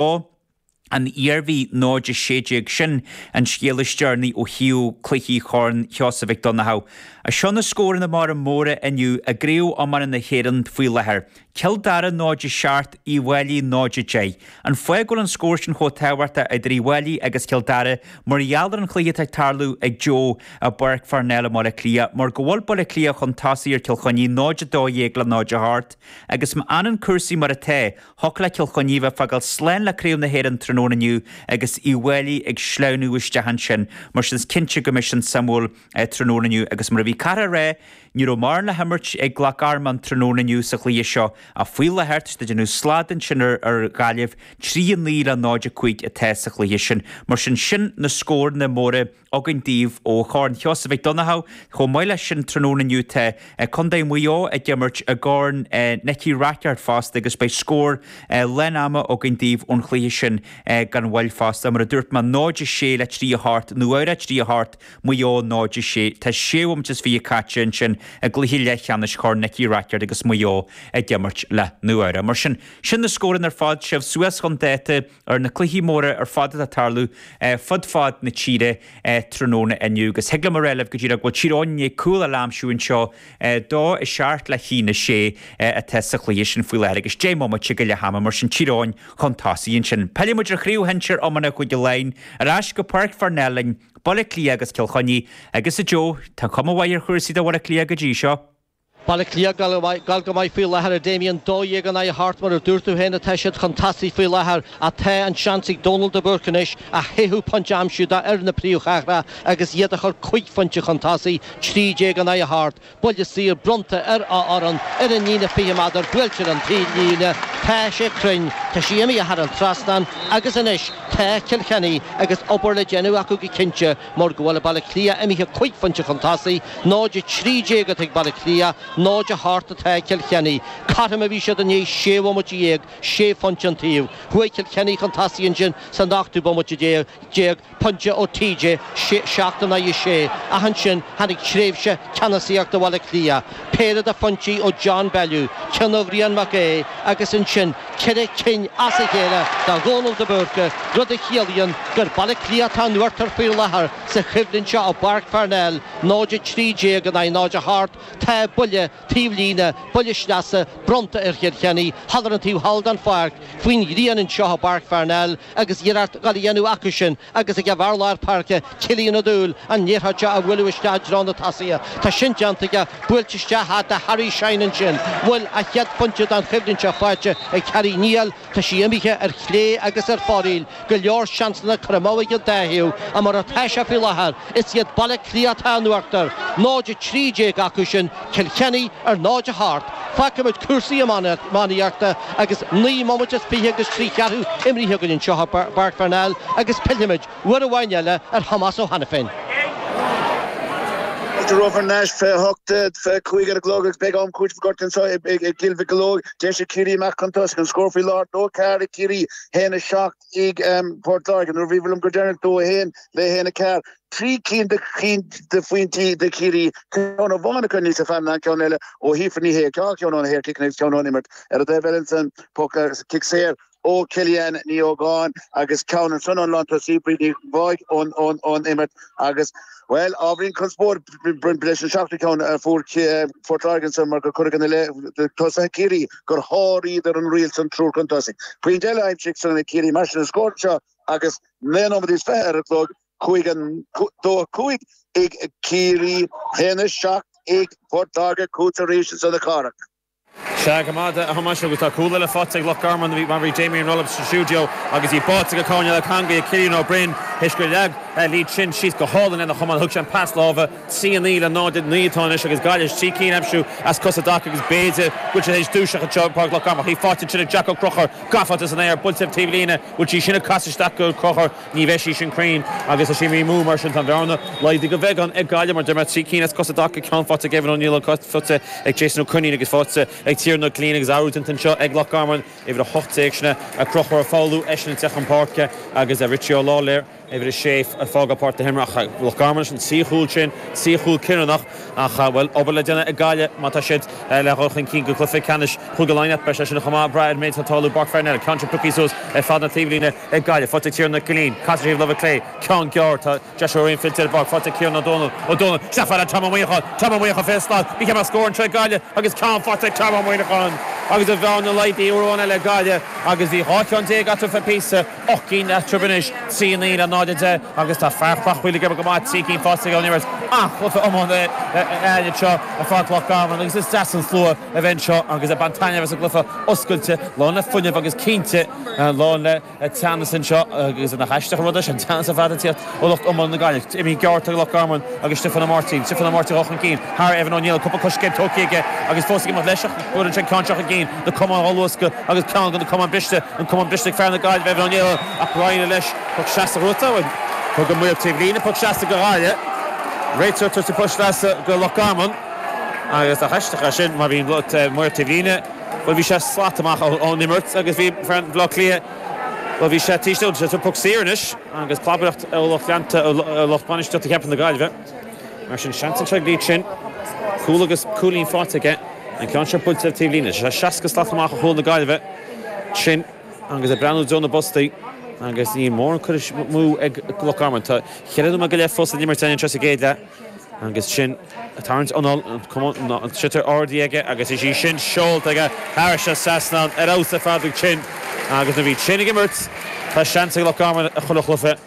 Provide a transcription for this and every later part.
Ó, an Iarmhí, 0 16 Sin an scéal is deireanaí ó thaobh cluichí Chorn Sheosaimh Mhic Dhonnchadha. As seo na scóranna móra móra inniu i gCraobh Iomána na hÉireann faoi láthair, Cill Dara 0 7 Uíbh Fhailí 0 10 An fáth go bhfuil an scór sin chomh tábhachtach idir Uíbh Fhailí agus Cill Dara mar gheall ar an chluiche atá ag tarlú ag Joe i bPáirc Pharnell i mBaile Átha Cliath mar go bhfuil Baile Átha Cliath chun tosaigh ar Chill Chainnigh 0 12 le 0 8 Agus má fhanann cúrsaí mar atá, Thiocfadh le Cill Chainnigh a bheith ag fágáil slán le Craobh na hÉireann tráthnóna inniu agus Uíbh Fhailí ag sleamhnú isteach ansin. Mar sin is cinnte go mbeidh sin suimiúil tráthnóna inniu agus mar a bhí Cárthach a rá, ní raibh mórán le himirt ag Loch Garman tráthnóna inniu sa chluiche seo ach faoi láthair tá siad ag déanamh slad ansin ar Ghaillimh, 3, 9 le 0, 5 atá sa chluiche sin. Mar sin sin na scóranna móra. againn daoibh ó Chorn Sheosaimh Mhic Dhonnchadha chomh maith leis sin tráthnóna inniu tá Contae Mhaigh Eo ag imirt i gCorn Nicky Rackard fosta agus beidh scór leath ama againn daoibh ón chluiche sin gan mhoill fosta. Mar a dúirt mé 0-6 le 3-8 Nua Eabhrac 3-8 Maigh Eo 0-6. Tá sé bhómant is fiche caite ansin i gcluiche leathcheannais Chorn Nicky Rackard agus Maigh Eo ag imirt le Nua Eabhrac. Mar sin, sin na scóranna ar fad, sibh suas chun dáta. ar na cluichí móra ar fad atá ag tarlú fud fad na tíre tráthnóna inniu agus thig liom a rá libh go díreach go bhfuil Tír Eoghain i ndiaidh cúl a aimsiú anseo 2 7 le 1 6 atá sa chluiche sin faoi láthair agus 10 mbomaite go leath ama mar sin Tír Eoghain chun tosaigh ansin. Pillfidh muid ar Chraobh Shinsear Iomána Chúige Laighin ar ais go Páirc Pharnell linn, Baile Átha Cliath agus Cill Chainnigh agus, a Joe, tá cuma mhaith ar chúrsaí do Bhaile Átha Cliath go dtí seo. Baile Átha Cliath, ag goil go maith faoi láthair a Damien, 12 in aghaidh a hocht mar a dúirt tú féin atá siad chun tosaigh faoi láthair ach tá an seans ag Dónal de Búrca anois a chúigiú pointe a aimsiú d'fhoireann na príomhchathrach agus iad a chur cúig phointe chun tosaigh, 13 in aghaidh a hocht. Buille saor bronnta ar a fhoireann ar an líne 20 méadar, buailtear an t-am seo, tá sé cruinn, tá sé imithe thar an trasnán agus anois tá Cill Chainnigh agus obair le déanamh acu go cinnte. Mar go bhfuil Baile Átha Cliath imithe cúig phointe chun tosaigh, 0 13 atá ag Baile Átha Cliath, 0 8 atá ag Cill Chainnigh. Cothrom a bhí siad i ndiaidh sé bhomaite dhéag, sé phointe an taobh. Chuaigh Cill Chainnigh chun tosaigh ansin san ochtú bomaite déag, pointe ó TJ, seacht in aghaidh a sé, ach ansin tháinig tréimhse ceannasaíochta Bhaile Átha Cliath. Péire de phointí ó John Bellew, ceann ó Bhrian Mac Aoidh agus ansin ceithre cinn as a chéile do Dhónal de Búrca, rud a chiallaíonn gur Baile Átha Cliath atá in uachtar faoi láthair sa choimhlint seo i bPáirc Pharnell, 0-13 in aghaidh 0-8. Tá buille taobh líne, buille sleasa, bronnta ar Chill Chainnigh thall ar an taobh thall den pháirc faoin ghrian anseo i bPáirc Pharnell agus iarracht dhá déanamh acu sin agus é ag an bhfear láir páirce Cillian Ó Dúill an liathróid seo a bhualadh isteach i dtreo na tosaithe. Tá sin déanta aige, buailte isteach thart ar Harry Shine ansin. Bhfuil a chéad phointe den choimhlint seo faighte ag Harry? Níl, tá sí imithe ar chlé agus ar fóraoil, go leor seansanna curtha amú ag an dá thaobh ach mar atá sé faoi láthair, is iad Baile Átha Cliath atá in uachtar, 0-13 acu sin. Cill Chainnigh ar 0 a hocht, fágfaimid cúrsaí iománaíochta agus naoi mbomaite is fiche agus trí cheathrú imrithe againn anseo i bPáirc Pharnell agus pillfimid uair amháin eile ar Thomás Ó hAiniféin. Fáilte romhaibh thar n-ais fiche hocht, fiche cúig ar an gclog agus beidh am cúitimh againn anseo i gCill Mocheallóg. Deis ag Ciarraí amach chun tosaigh, an scór faoi láthair 2-4 ag Ciarraí, 1-7 ag Port Láirge. Nuair a bhíobhair liom go deireanach 2-1 le 1-4. trí cinn de cinn de phointí de Chiarraí, ceann ó Mhánacha aníos ar feadh na ceann eile ó Shíofra Ní Shéaghdha, dhá cheann ó na saorchiceanna agus ceann ón imirt ar an dtaobh eile ansan, poc ar cic saor ó Kellyann Ní Ógáin agus ceann ansan ón lántosaí, Bríd Ní Bháigh ón ón imirt agus, bhuel, ábhairín conspóid leis an seachtú ceann a fuair Port Láirge ansan mar gur cuireadh ina leith do tosaithe Ciarraí gur sháraíodar an riail san triúr chun tosaigh. Pointe eile aimsithe ansan ag Ciarraí mar sin an scór anseo agus naoi nóiméad is fiche ar an gclog Chuaigh an dó a cúig ag Ciarraí, théann a seacht ag Port Láirge, chugat arís ansan a Chárthaigh. Sea, go raibh maith agat a Thomáis, agus tá cúl eile faighte ag Loch Garman, mar a bhí Damien ag rá libh sa stiúideo agus í báite go cúinne na heangaí ag Cillian Ó Broin théis gur leag Lee Chin síos go hálainn lena chamán. Thug sé an pas láimhe trí a naoi le 0-9 atá anois agus Gaillimh trí cinn aimsithe as cosa i dtaca agus b'fhéidir go bhfuil siad théis dúiseacht anseo ag Páirc Loch Garman. Faighte ansin ag Jack Ó Conchubhair, gafa san aer, buailte taobhlíne, bhfuil sí sin ag casadh isteach ag Ó Conchubhair? Ní bheidh sí sin cruinn agus tá sí imithe amú mar sin tá an bhearna laghdaithe de bheagán ag Gaillimh mar deir mé trí cinn as cosa i dtaca ceann faighte ag Evan Ó Nialláin ceann faighte ag Jason Ó Coinín agus faighte ag Tiarnán Ó Cillín agus athrú déanta anseo ag Loch Garman uimhir 18 sin é Conchúr Ó Foghlú eisean ag teacht chun páirce agus Richie Ó Lailéir uimhir 6 ag fágáil páirc na himeartha ag Loch Garman leis an trí chúl sin trí chúl cinniúnach ach bhfuil obair le déanamh ag Gaillimh má tá siad le dhul chun cinn go cluiche ceannais Chúige Laighean beidh sé sin chomh maith ag brath ar an méid atá ag tarlú i bPáirc Pharnell ceann sin pioctha suas ar fad na taobhlíne ag Gaillimh, faighte ag Tiarnán Killeen, Castle Hill, láimhe clé, ceann gearr, Tá deis araon fillte ar an bpáirc, faighte ag Cian Ó Dónaill, Ó Dónaill, chomh fada le Tom Ó Muineacháin, Tom Ó Muineacháin, fiche slat, Micheál Mac Scórn, ag Gaillimh agus ceann faighte ag Tom Ó Muineacháin agus an bhearna laghdaithe uair amháin eile ag Gaillimh agus bhí dhá cheann déag eatarthu ar feadh píosa, ocht gcinn eatarthu anois, trí, naoi le náid, a deich agus tá fear Chreachmhaoil ag obair go maith, trí cinn faighte aige ón imirt. Ah, cluiche iomlán eile anseo ar pháirc Loch Garman agus is deas an slua a bheith anseo agus ag baint taitneamh as an gcluiche oscailte, lán le fuinneamh agus cinnte, lán le teannas anseo agus nach aisteach an rud é sin, teannas ar fad ag tíocht ó lucht iomlán na Gaillimhe. Jimmy Geárrtt ag Loch Garman agus Stiofán Ó Máirtín. Stiofán Ó Máirtín dhul chun cinn thar Evan Ó Nialáin, cúpla coiscéim tugtha aige agus fós ag imeacht leis ach ní bhfuair an sin ceann seo chun cinn. Na camáin dhá luascadh agus ceann de na camáin briste, an camán briste ag fear na Gaillimhe Evan Ó Nialáin ach greim ar leis. Poc sleasa dhúnta againn. Thug an maor taobh líne poc sleasa do Ghaillimh. Réiteoir ag tabhairt poc sleasa do Loch Garman agus nach aisteach é sin mar bhí an maor taobh líne, Bhuel, bhí sé slat amach ón imirt agus bhí fear an Bhleá Cliath, bhuel, bhí sé tar éis dul sa poc saor anois agus clabaireacht ó lucht leanta, ó lucht bainistíochta ceapaim na Gaillimhe. Mar sin, seans anseo ag Lee Chin. Cúl agus cúilín faighte aige. An ceann seo buailte ar taobh líne. Tá sé seasca slat amach ó chúl na Gaillimhe. Chin ag breathnú i dtreo na bpostaí agus ní mórán curtha amú ag Loch Garman. Tá cheithre nóiméad go leith fós le n-imirt anseo sa gcéad leath. Agus Chin ag tarraingt anall, an sliotar ardaithe aige agus é sin seolta aige thar an trasnán ar fheabhas ar fad ag Chin. Agus nuair a bhíonn Chin ag imirt, tá seans ag Loch Garman i chuile chluiche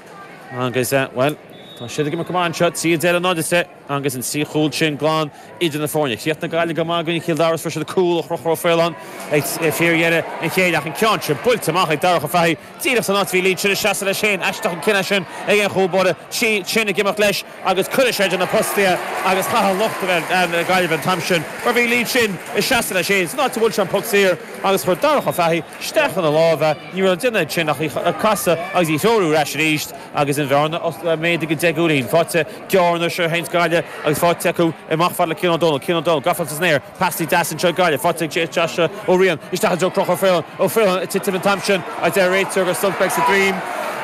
agus, bhuel, tá siad ag imirt go maith anseo. Trí a deich le náid a deich agus an trí chúl sin glan idir na foirne. Chríochnaigh na Gaillimhigh go maith i gcoinne Chill Dara is fuair siad cúl ó Chonchúr Ó Faoláin ag fíordheireadh an chéid ach an ceann sin buailte amach ag Darach Ó Fathaigh. Díreach san áit a bhí Lee Chin ina sheasamh leis féin. Aisteach an cinneadh sin ag aon chúl báire Chin ag imeacht leis agus cuireann sé idir na postaithe agus caithfidh lucht na Gaillimhe an t-am sin mar bhí Lee Chin ag seasamh leis féin san áit a bhuail sé an poc saor agus chuir Darach Ó Fathaigh isteach ina lámha é. Ní raibh le déanamh ag Chin ach casadh agus í a threorú ar ais arís agus an bhearna oscailte méadaithe go deich gcúilín. Faighte gearr anois an t-am seo ag Gaillimh agus faighte acu amach chomh fada le Cian Ó Dónaill. Cian Ó Dónaill, gafa san aer. Theastaigh deas anseo ag Gaillimh, faighte ag J.H. Joshua Ó Riain isteach i dtreo Conchúr Ó Faoláin, ag titim an t-am sin, a deir an réiteoir agus Some Specks a Dream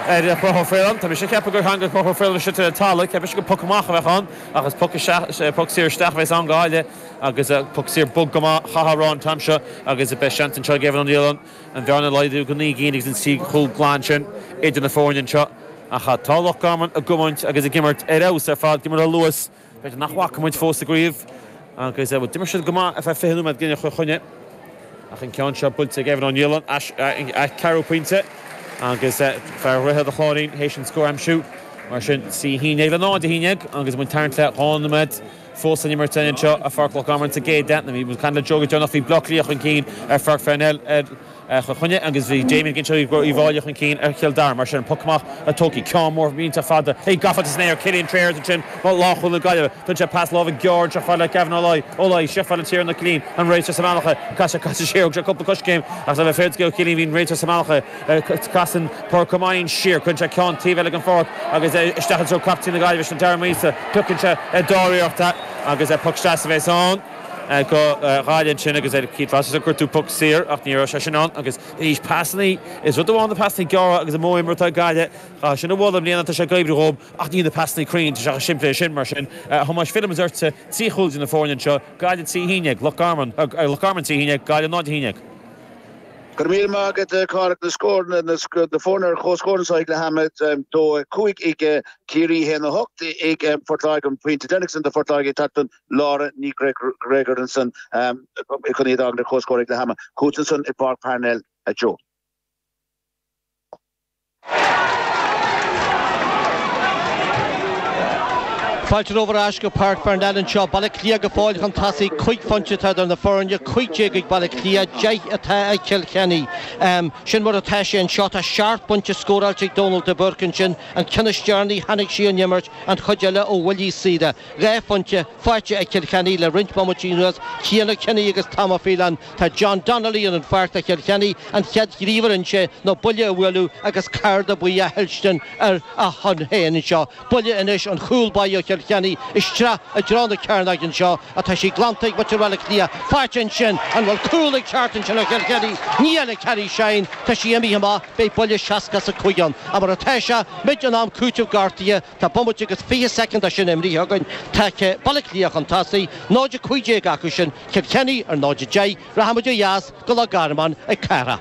ar Chonchúr Ó Faoláin. Tá mé sin ag ceapadh gur theanga Conchúr Ó Faoláin a sitile an t-eala, ceapaim sin gur poc amach a bheadh ann ach is poc isteach, poc saor isteach a bheas ann go háirithe agus poc saor bog go maith, caithfear a rá an t-am seo agus beidh seans anseo ag Evan Ó Nialáin an bhearna a laghdú go naoi gcinn agus an trí chúl glan sin idir na foirne anseo. Ach tá Loch Garman ag gabhaint agus ag imirt ar fheabhas ar fad, go minic a luas. B'fhéidir nach bhfaca muid fós i gCraobh agus d'imir siad go maith ar feadh fiche nóiméad i gcoinne Chill Chainnigh ach an ceann seo buailte ag Evan Ó Nialáin a cheathrú pointe agus fear Dhroichead a Chláirín théis an scór a aimsiú. Mar sin trí a haon déag le náid a haon déag agus muid ag teannadh le dhá nóiméad fós san imirt anseo i bPáirc Loch Garman sa gcéad leath. Bhí muid ag caint le Joe go deireanach, bhí Bleá Cliath chun cinn ar Pháirc Pharnell ar. Chill Chainnigh agus bhí Damien ag inse go raibh Uíbh Fháilí chun cinn ar Chill Dara mar sin an poc amach tógtha ceann mór iontach fada. Beidh gafa san aer ag Cillian Trayers ansin lánchúlaí na Gaillimhe. Tugann sé pas láimhe gearr chomh fada le Gavin Ó Laoi. Ó Laoi, chomh fada le Tiarnán Ó Cillín, an réiteoir sa mbealach air. Chas sé, chas sé siar, thug sé cúpla coiscéim ach le bheith fair do Ó Cillín bhí an réiteoir sa mbealach air. Casann Pádraic Ó Mainnín siar, cuireann sé ceann taobh eile den pháirc agus isteach i dtreo captaen na Gaillimhe sin Darren Morrissey. Piocann sé dáiríreacht agus poc sleasa é san. Go gairid ansin agus ar Keith Rossiter chuir tú puc saor ach ní raibh sé sin ann agus anois pasanna is rud amháin na pasanna gearra agus an modh imeartha i gceist acu sin i mbun i mbliana tá sé ag oibriú dhóibh ach níl na pasanna cruinn tá sé chomh simplí sin mar sin a Thomáis Fillfidh mé ortsa trí chúl de na foirne anseo Gaillimh trí cinn ag Loch Garman ag Loch Garman trí cinn ag Gaillimh 0 Thine ag Go raibh míle maith agat a Chárthaigh na scór na foirne ar chomhscór anseo ag leath ama 2-5 ag Ciarraí 1-8 ag Phort Láirge an pointe deireanach san do Phort Láirge ag tacú don Laura Ní Ghreagoir ansan i gcónaí ag bagairt ar chomhscór ag leath ama. Chughatsa ansan i bPáirc Parnell a Joe. Fáilte romhaibh ar ais go Páirc Pharnell anseo, Baile Átha Cliath go fóill chun tosaigh. Cúig phointe atá idir na foirne, 15 ag Baile Átha Cliath, 10 atá ag Cill Chainnigh. Sin mar atá sé anseo, tá seacht bpointe scóráilte ag Dónal de Búrca ansin, an ceann is deireanaí, tháinig sí ón imirt, an chuid eile ó bhuillí saora. Dhá phointe faighte ag Cill Chainnigh le roinnt bomaití anuas, Cian Kenny agus Tom Ó Faoláin. Tá John Donnelly ar an pháirc do Chill Chainnigh, an chéad ghníomh a rinne sé ná buille a bhualadh agus cárta buí a thuillstean ar a shon féin anseo. Buille anois ón chúlbá ó Chill Chainnigh isteach i dtreo na cearnóige anseo atá sí glanta ag muintir Bhaile Átha Cliath. Faighte ansin, an bhfuil cúl ag teacht ansin ó Chill Chainnigh? Níl, Harry Shine. Tá sí imithe amach, beidh buille 65 ann. Ach mar atá seo, muid in am cúiteamh gortaithe Tá bomaite agus fiche soicind de sin imithe againn, tá Baile Átha Cliath chun tosaigh, 0:15 acu sin, Cill Chainnigh ar 0:10, rachaimid ó dheas go Loch Garman a Chárthaigh.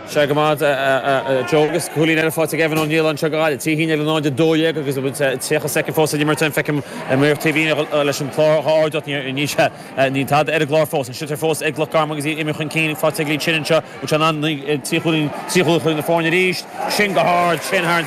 Sea, go maith, a Joe, agus cúilín eile faighte ag Evan Niland anseo go Baile Átha Cliath le 0:12 agus tríocha soicind fós le n-imirt ann. Feicim ar mo TV leis an clár dhá uair déag níor níos ea. Níl tada ar an gclár fós. An sliotar fós ag Loch Garman agus iad ag imeacht chun cinn, faighte ag Lee Chin anseo. An sé an an trí chúilín, trí chúilín idir na foirne arís. Sin go hard, sin thar an.